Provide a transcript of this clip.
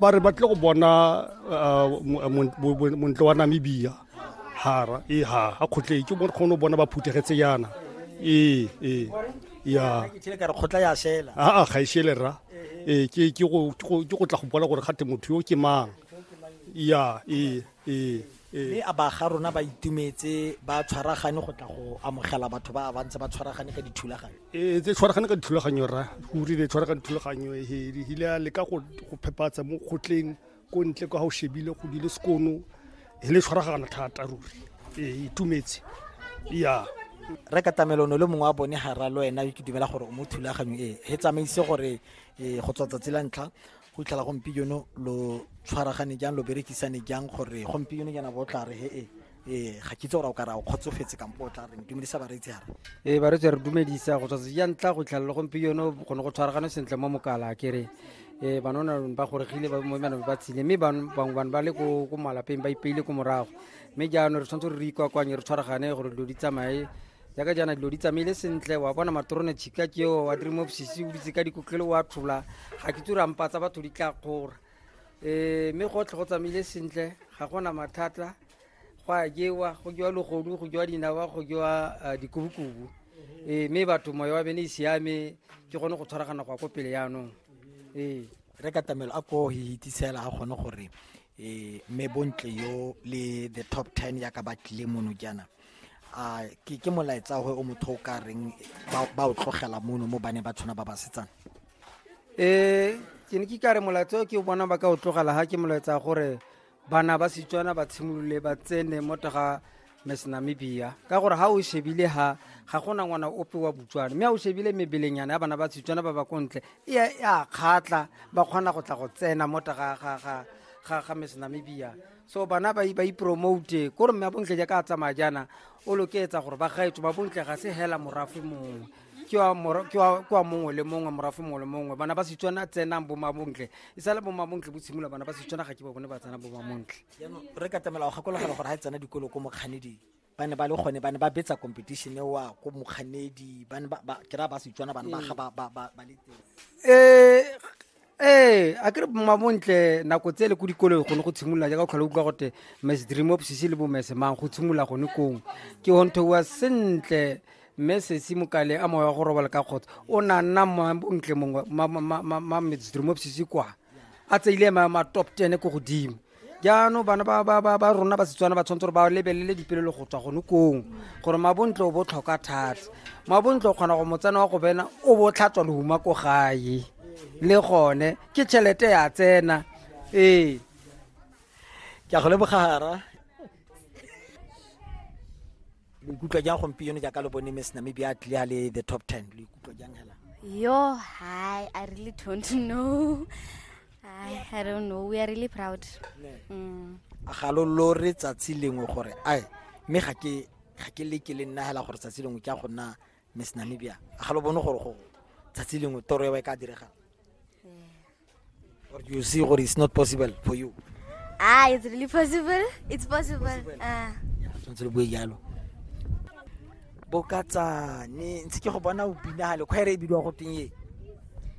ba re ba tle go bona montle wa namibia hara e ha a kgotleng ke kgone go bona ba phuthegetse yana ee ee ya kgotla ya shela aa ga e shele rra ee ke go tla go bona gore gate motho yo ke mang ya ee ee mme a ba ga rona ba itumetse ba tshwaragane go tla go amogela batho ba ba ntse ba tshwaragane ka dithulaganyo ee tse tshwaragane ka dithulaganyo ra go rile tshwaragane dithulaganyo hile a leka go phepatsa mo kgotleng ko ntle kwa ga o shebile go dile sekono e le tshwaragana thata ruri ee itumetse ya re ka tamelono le mongwe wa bone ga ra le wena ke dumela gore o mo thulaganyo e he tsamaise gore go tswa tsatsi la ntlha go itlhela gompieno lo tshwaragane jang lo berekisane jang gore gompieno jana bo tla re he e ee ga kitse gore o kara o kgotsofetse kampo o tla reng dumedisa bareetsi gara ee bareetsi re dumedisa go tswa ya ntla go itlhela le gompieno gone go tshwaragane sentle mo mokala kere um banona ba goregile bamana ba tshile mme bangwe bane ba le ko malapeng ba ipeile ko morago mme jaanong re tshwanetse gore re ikwakwanye re tshwaragane gore dilo di tsamaye jaaka jaana dilo di tsamaile sentle wa bona matrone chika ke yo wa dream of sisi o ditse ka dikotlelo wa tlhola ga ke tura mpa tsa batho di tla kgora um mme gotlhe go tsamaile sentle ga gona mathata go a jewa go jewa logodu go jewa dinawa go jewa eh, dikubukubu ee mme batho moya wa bene e siame ke kgone go tshwaragana go ya ko pele yaanong ee re katamelo a ko hitisela a kgone gore um mme bontle yo le the top ten yaka ba tlile mono jaana a ke ke molaetsa gore o motho o ka reng ba o tlogela mono mo bane ba tshwana ba ba setsana ee ke ne ke kare molaetsa o ke bona ba ka o tlogela ga ke molaetsa gore bana ba setswana ba tshimolole ba tsene mo taga miss namibia ka gore ga o shebile ga ga gona ngwana ope wa botswana mme a o shebile mebelenyana ya bana ba setswana ba ba ko ntle e a kgatlha ba kgona go tla go tsena mo taga ga ga ga ga miss namibia so bana ba ba ipromote ko re mme bontle jaaka a tsamaya jaana o loketsa gore ba gaetso ba bontle ga se hela morafe mongwe ke wa mora- ke wa- ke wa mongwe le mongwe morafe mongwe le mongwe bana ba setswana tsenang bomabontle e sale bomabontle bo tshimolola bana ba setswana ga ke ba bone ba tsena bomabontle jaanong re ka tlamela go gakologelwa gore ga e tsena dikolo ko mokganeding ba ne ba le gone ba ne ba betsa competition wa ko mokganedi ba ne ba ke ra ba setswana ba ne ba ga ba ba ba ba le teng eh ee a kere mabontle nako tse le ko dikolong gone go tshimolola jaaka tlhola utlwa gote mes dream of sisi le bo mese mang go tshimolola gone kong ke hontho wa sentle mme sesi mokale a moya go robala ka kgotsa o na nna mabontle mongwe ma mes dream of sisi kwa a tseile ma top ten ko godimo jaanong bana ba rona ba setswana ba tshwanetse gore ba lebelele dipelelo go tswa gone kong gore mabontle o bo tlhoka thata mabontle o kgona go motsena wa go bena o bo tlhatswa lehuma ko gae le gone ke tšhelete ya tsena ee ke a go lebogara lo ikutlwa jang gompieno jaaka lo bone miss namibia a tlile a le the top ten lo ikutlwa jang hela yo hi i really don't know I, I don't know we are really proud mm. a ga lo lo re tsatsi lengwe gore ai mme ga ke ga ke leke le nna hela gore tsatsi lengwe ke a go nna miss namibia a ga lo bone gore go tsatsi lengwe toro ya ba e ka diregala Or you see what is not possible for you? Ah, it's really possible. It's possible. possible. Ah. Yeah, tshwanetse le bue jalo. Bokatsane, ntse ke go bona o binagale, khwaere e bidiwa go teng e.